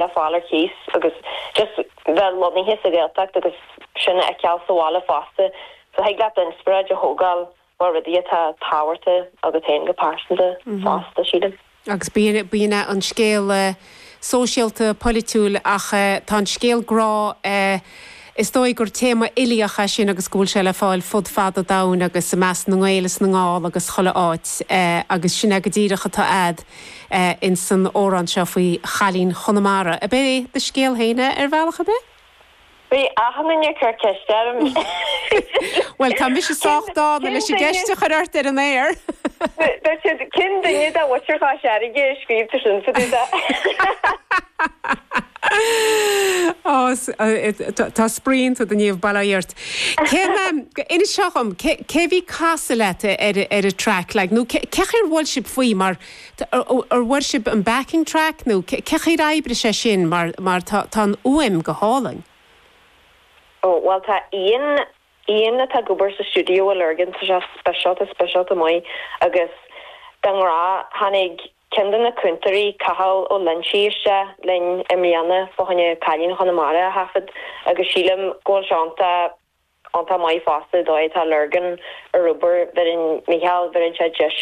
le fáil ar cíos agus just bheith lonnaithe sa Ghaeltacht agus sin a fheiceáil sa bhaile fosta so thig leat inspioráid a thógáil ó rudaí atá tábhachtach agat féin go pearsanta fosta sílim. Agus bíonn an scéal sóisialta, polaitiúil ach tá an scéal grá. Is dóigh gur téama uilíoch é sin agus go bhfuil sé le fáil fud fad an domhain agus i measc na nGael is na nGall agus chuile áit agus sin é go díreach atá agat ins an amhrán seo faoi chailín Chonamara ab é do scéal féin é ar bhealach ar bith? Bhí achan duine ag cur ceiste orm. Bhuel, tá mise sách dána leis an gceist a chur ort ar an aer! Dúirt siad, cén duine dá bhfuitear dhá searraighe a scríobh tú sin fá dtaobh de? Ó, tá spraoi ionat, a Niamh, bail ó Dhia ort. Cé mé, inis seo dhom, cé a bhí ag casadh leat ar an track, like, nó cé chaoi ar bhuail sibh faoi mar, ar bhuail sibh an backing track nó cé chaoi ar oibrigh sé sin mar, mar tá, tá an fhuaim go hálainn. Ó, bhuel, tá Ian, Ian atá ag obair sa stiúideo i Lurgan, tá sé speisialta, speisialta maith agus dá ngrá, tháinig, Ceann de na cúntóirí, Cathal Ó Loinsigh, isteach linn i mbliana fá choinne Cailín Chonamara a thaifead agus sílim go bhfuil sé iontach, iontach maith fosta an dóigh atá Lurgan ag obair, bheireann Micheál, bheireann sé deis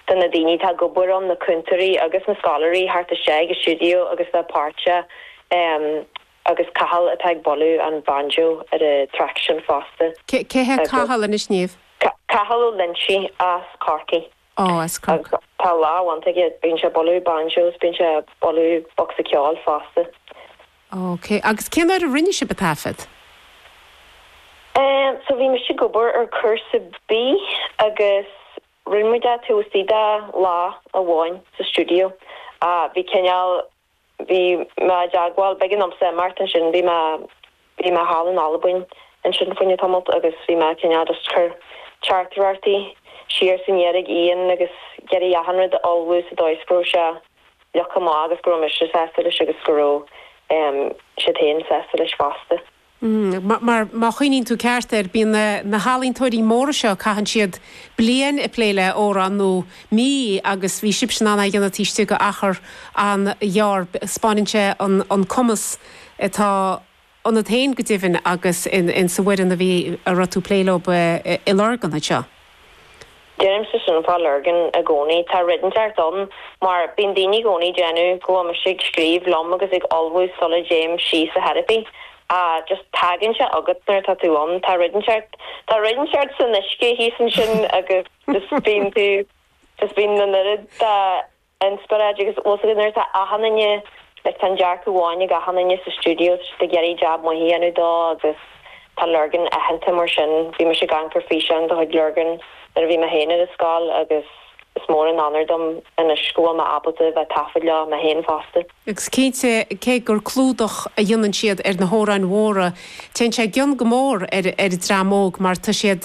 do na daoine atá ag obair ann, na cúntóirí agus na scoláirí, theacht isteach i stiúideo agus bheith páirteach agus Cathal atá ag bualadh an banjo ar an track sin fosta. Cé hé Cathal anois, Niamh? Cathal Ó Loinsigh as Corcaigh. Ó, as Corcaigh. Tá lámh iontach aige, bíonn sé ag bualadh banjos, bíonn sé ag bualadh bocsa ceoil fosta. OK. Agus cén uair a rinne sibh an taifead? Ehm, so bhí mise ag obair ar cúrsa B agus rinne muid é taobh istigh de lá amháin sa stiúideo. Bhí cineál bhí mé i dteagmháil, b'éigean domhsa imeacht ansin, bhí mé, bhí mé thall in Albain ansin fá choinne tamailt agus bhí mé cineál just ag cur teachtaireachtaí siar is aniar chuig Ian agus ag iarraidh achan rud a ullmhú sa dóigh is go raibh sé uilig go maith agus go raibh mise sásta leis agus go raibh siad féin sásta leis fosta. mar má chuimhníonn tú ceart air, bíonn na healaíontóirí móra seo, caitheann siad bliain ag plé le amhrán, nó mí, agus bhí sibhse in ann é a dhéanamh taobh istigh de achar an-ghearr. 'Speáineann sé an cumas atá ionat féin go deimhin agus insa bhfoireann a bhí, a raibh tú ag plé leo i Lurgan anseo. Deirimse sin fá Lurgan i gcónaí. Tá rud inteacht ann, mar bíonn daoine i gcónaí ag déanamh go bhfuil mise ag scríobh liom agus ag ullmhú sula dtéim síos a theiripí. Á, just tagann sé agat nuair atá tú ann. Tá rud inteacht, tá rud inteacht san uisce thíos ansin agus just bíonn tú, just bíonn an oiread de, Inspioráid agus tá's agat nuair atá achan duine, leis, tá an dearcadh amháin ag achan duine sa stiúideo, siad ag iarraidh jab maith a dhéanamh dó agus tá Lurgan aitheanta mar sin. Bhí mise ag amharc ar físeáin de chuid Lurgan nuair a bhí mé féin ar an scoil agus is mór an onóir dom anois go bhfuil mé ábalta a bheith ag taifead leo mé féin fosta. Agus cinnte, cé gur clúdach a dhéanann siad ar na hamhráin mhóra, téann sé i gcion go mór ar an dream óg mar tá siad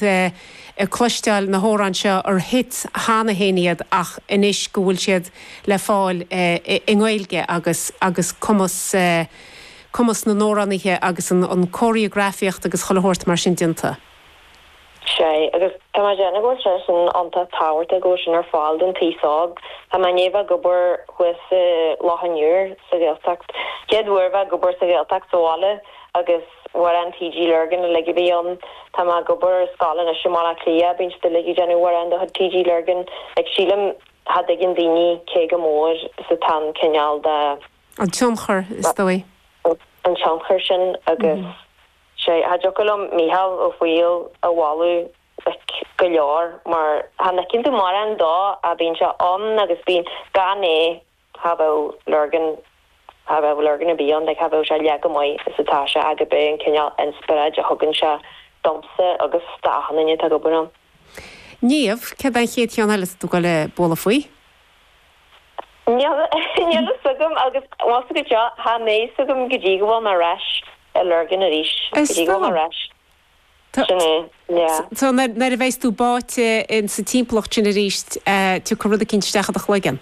ag cloisteáil na hamhráin seo ar 'hits' cheana féin iad ach anois go bhfuil siad le fáil i nGaeilge agus agus cumas cumas na n-amhránaithe agus an cóiríografaíocht agus chuile shórt mar sin déanta. sé, agus tá mé ag déanamh go bhfuil sé sin iontach tábhachtach go bhfuil sin ar fáil don t-aos óg. Tá mé i ndiaidh bheith ag obair thuas i Loch an Iúir sa Ghaeltacht. Chéad uair bheith ag obair sa Ghaeltacht sa bhaile agus amhráin TG Lurgan uilig a bhí ann. Tá mé ag obair i scoil anois i mBaile Átha Cliath, bíonn siad uilig ag déanamh amhráin de chuid TG Lurgan. Like sílim cha dtuigeann daoine cé chomh mór is atá an cineál de. An tionchar is dóigh. An tionchar sin agus. sé, cha dtiocfadh liom Mícheál Ó Foighil a mholadh ard go leor, mar chan fheiceann tú mórán dó, a bhíonn sé ann agus bíonn, gan é cha bheadh Lurgan, cha bheadh Lurgan ar bith ann, cha bheadh sé leath chomh maith is atá sé ach ab é an cineál inspioráid a thugann sé domsa agus d'achan duine atá ag obair ann. Niamh, céard é an chéad cheann eile atá tú le bualadh faoi? Níl fhios agam agus más go deo, cha mbeidh fhios agam go dtí go bhfuil mé ar ais i Lurgan arís. Go dtí go bhfuil mé ar ais. Sin é, yeah. So nuair a bheidh's tú báite in sa timpeallacht sin arís tiocfaidh rud eicínt isteach i do chloigeann.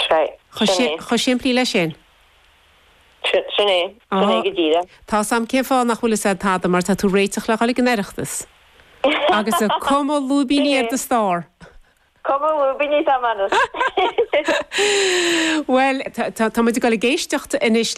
Right, sin é. Chomh simplí leis sin. Sin é, sin é go díreach. Tá's agam cén fáth nach bhfuil fhios a'd tada mar tá tú ag réiteach le dhul ag an Oireachtas. Agus ag cumadh lúibíní ar do starr. Cumadh lúibíní atá mé anois. Bhuel, tá muid ag dul ag éisteacht anois le.